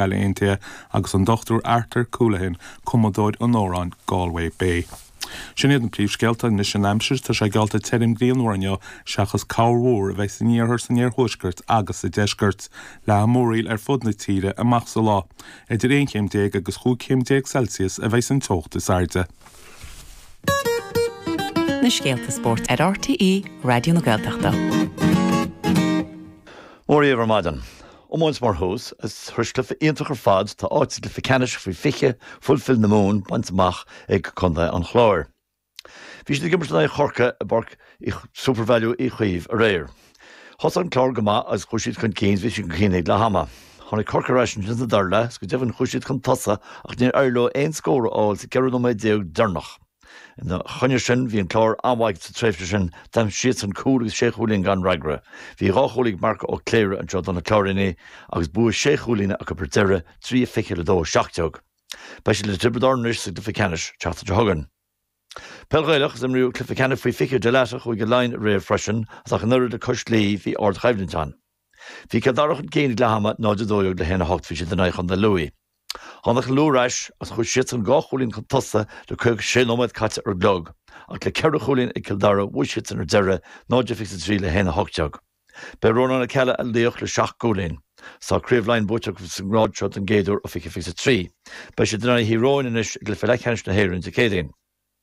Baile Aontaithe, agus an Dr Arthur Colahan, cumadóir an amhráin, Galway Bay. Sin iad na príomhscéalta, anois an aimsir, tá sé geallta tirim grianmhar inniu, seachas corrmhúr a bheas san iarthar, san iarthuaisceart agus sa deisceart, leathfaidh múraíl ar fud na tíre amach sa lá, idir 11 chéim agus 15 chéim Celsius a bheas an teocht is airde. Na scéalta spóirt ar RTÉ Raidió na Gaeltachta. Móra dhaoibh ar maidin. Iomáint mar thús, is thréis cluiche iontach ar fad tá áit sa gcluiche ceannais faoi 20, Fulfil na Mumhan, bainte amach ag contae an Chláir. Bhí siad ag imirt in aghaidh Chorcaí i bPáirc Supervalu Uí Chaoimh aréir. Thosaigh an Clár go maith agus chuaigh siad chun cinn, bhí siad chun cinn ag leath ama. Tháinig Corcaigh ar ais ansin sa dara leath is go deimhin chuaigh siad chun tosaigh ach níor éirigh leo aon scór a fháil sa 14 nóiméad deireanach. Ina choinne sin, bhí an Clár an-mhaith sa tréimhse sin, d'aimsigh siadsan cúl agus sé chúilín gan fhreagra. Bhí dhá chúl ag Marco Ó Cléirigh anseo do na Cláirínigh agus bua sé chúilín acu ar deireadh, 3, 20 le 2, 17. Beidh siad le Tiobraid Árann anois sa gcluiche ceannais an tseachtain seo chugainn. Peil Ghaelach, Is imríodh cluiche ceannais faoi 20 Dalata Chúige Laighean aréir freisin, is ach an oiread le cois Laoi bhí ardchoimhlint ann. Bhí Cill Dara chun cinn ag leath ama, 0 12 le haon a hocht bhí siad in aghaidh Chontae Lú. Tháinig Lú ar ais agus chuaigh siadsan dhá chúilín chun tosaigh le 56 nóiméad caite ar an gclog, ach le ceithre chúilín ag Cill Dara bhuaigh siadsan ar deireadh, 0 23 le haon a hocht déag. B'é Rónán Ó Ceallaigh a laoch le seacht gcúilín. Is tá Craobh Laighean buaite acu sa ngrád seo don gcéad uair ó 20 23. Beidh siad in aghaidh Thír Eoghain anois i gCluiche Leathcheannais na hÉireann Dé Céadaoin.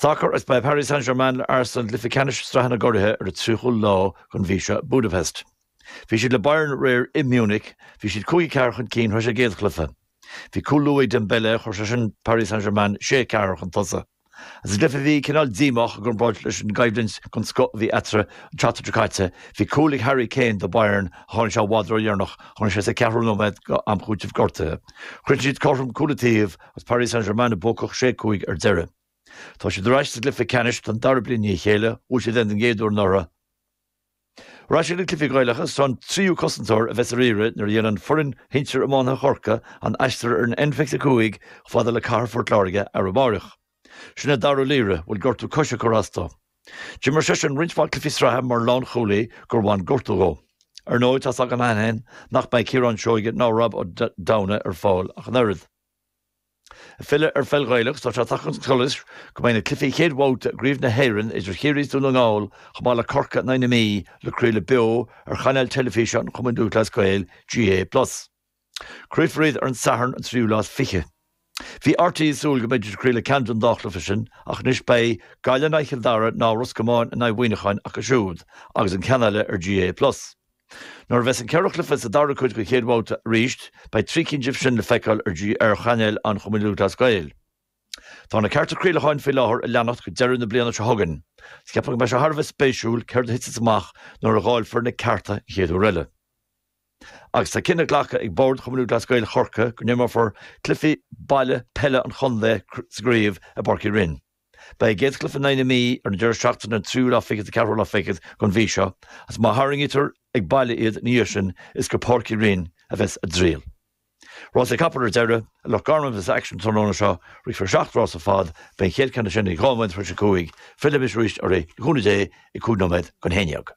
Sacar, Is beidh Paris Saint-Germain le Arsenal i gcluiche ceannais sraithe na gcuraithe ar an 30ú lá den mhí seo i Budapest. Bhí siad le Bayern aréir i Munich. Bhí siad cúig a ceathair chun cinn thréis a gcéad chluiche. Bhí cúl luath ag Dembele, chuir sé sin Paris Saint-Germain sé a ceathair chun tosaigh. Sa gcluiche a bhí cineál díomách i gcomparáid leis an gcoimhlint den scoth a bhí eatarthu an tseachtain seo caite, bhí cúl ag Harry Kane do Bayern ach tháinig sé i bhfad ródheireanach, tháinig sé sa cheathrú nóiméad d'am chúitimh gortuithe. Chríochnaigh siad cothrom cúl an taobh Agus Paris Saint-Germain buacach sé cúig ar deireadh. Tá siad ar ais sa gcluiche ceannais don dara bliain i ndiaidh a chéile, bhuaigh siad é don gcéad uair anuraidh. Ar ais ag na cluichí Gaelacha, is an tríú cosantóir a bheas ar iarraidh nuair a dhéanann foireann shinsir iománaithe Chorcaí an aistear ar an N25 chomh fada le cathair Phort Láirge arú amáireach. Sin é Dáire Ó Laoire, a bhfuil gortú coise ag cur as dó. D'imir seisean roinnt mhaith cluichí sraithe mar lánchúlaí gur bhain gortú dhó. Ar ndóigh, tá's againn cheana féin nach mbeidh Ciarán Seoige ná Rob Ó Domhnaigh ar fáil ach an oiread. Ag filleadh ar pheil Ghaelach, tá sé tagtha chun solais go mbeidh na cluichí chéad bhabhta i gCraobh na hÉireann idir Chiarraí is Dún na nGall chomh maith le Corcaigh in aghaidh na Mí le craoladh beo ar chainéal teilifíse an Chumainn Lúthchleas Gael, GAA plus. Craolfar iad ar an Satharn an tríú lá is fiche. Bhí RTÉ ag súil go mbeidís ag craoladh ceann den dá chluiche sin ach anois beidh, Gaillimh in aghaidh Chill Dara ná Ros Comáin in aghaidh Mhuíneacháin, acu siúd agus an ceann eile ar GAA plus. Nuair a bheas an ceithre chluiche sa dara cuid den chéad bhabhta arís, beidh trí cinn díobh sin le feiceáil ar, ar chainéal an Chumainn Lúthchleas Gael. Tá na cearta craolacháin faoi láthair a leanacht go deireadh na bliana seo chugainn. Ceapaim go mbeidh sé thar a bheith spéisiúil céard a thitfidh amach nuair a dháilfear na cearta an chéad uair eile. Agus tá cinneadh glactha ag Bord Chumann Lúthchleas Gael Chorcaighe go n-imreofar cluichí baile peile an chontae sa gcraobh i bPáirc Uí Rinn. Beidh a gcéad chluiche in aghaidh na Mí ar an deireadh seachtaine an tríú lá fichead 's an ceathrú lá fichead den mhí seo agus má tharraingítear ag baile iad ina dhiaidh sin is go Páirc Uí Rinn a bheas a dtriall. Rásaí capall ar deireadh. I Loch Garman a bheas aicsean an tráthnóna seo. Rithfear seacht rás ar fad. Beidh an chéad cheann acu sin ag dhá nóiméad tar éis a cúig. Fillfidh muid arís oraibh, le cúnamh Dé, ag cúig nóiméad chun a haon déag.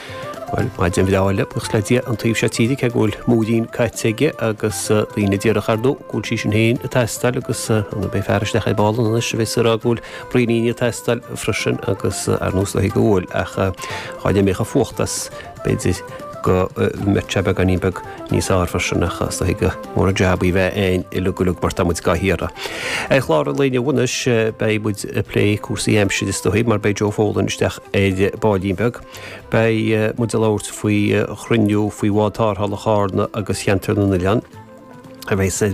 Bhuel, maidin bhreá eile, buíochas le Dia, an taobh seo tíre, cé go bhfuil múirín caite aige agus daoine ag déanamh amach, ar ndóigh, go bhfuil sí sin féin ag teastáil agus beidh fear isteach ar ball anois a bheas ag rá go bhfuil braoiníní ag teastáil freisin agus ar nós na huile uair ach dhá n-imeodh an fuacht as, b'fhéidir go mbeadh sé beagáinín beag níos fearr ansin ach is dóigh gur mór an jab í a bheith againn uilig uilig mar tá muid dhá hiarraidh. Ar chlár an lae inniu anois beidh muid ag plé cúrsaí aimsire is dóigh mar beidh Joe Folan isteach ar baillín beag. Beidh muid ag labhairt faoi chruinniú faoi bhád tarrthála Charna agus Cheantar na nOileán a bheas sa.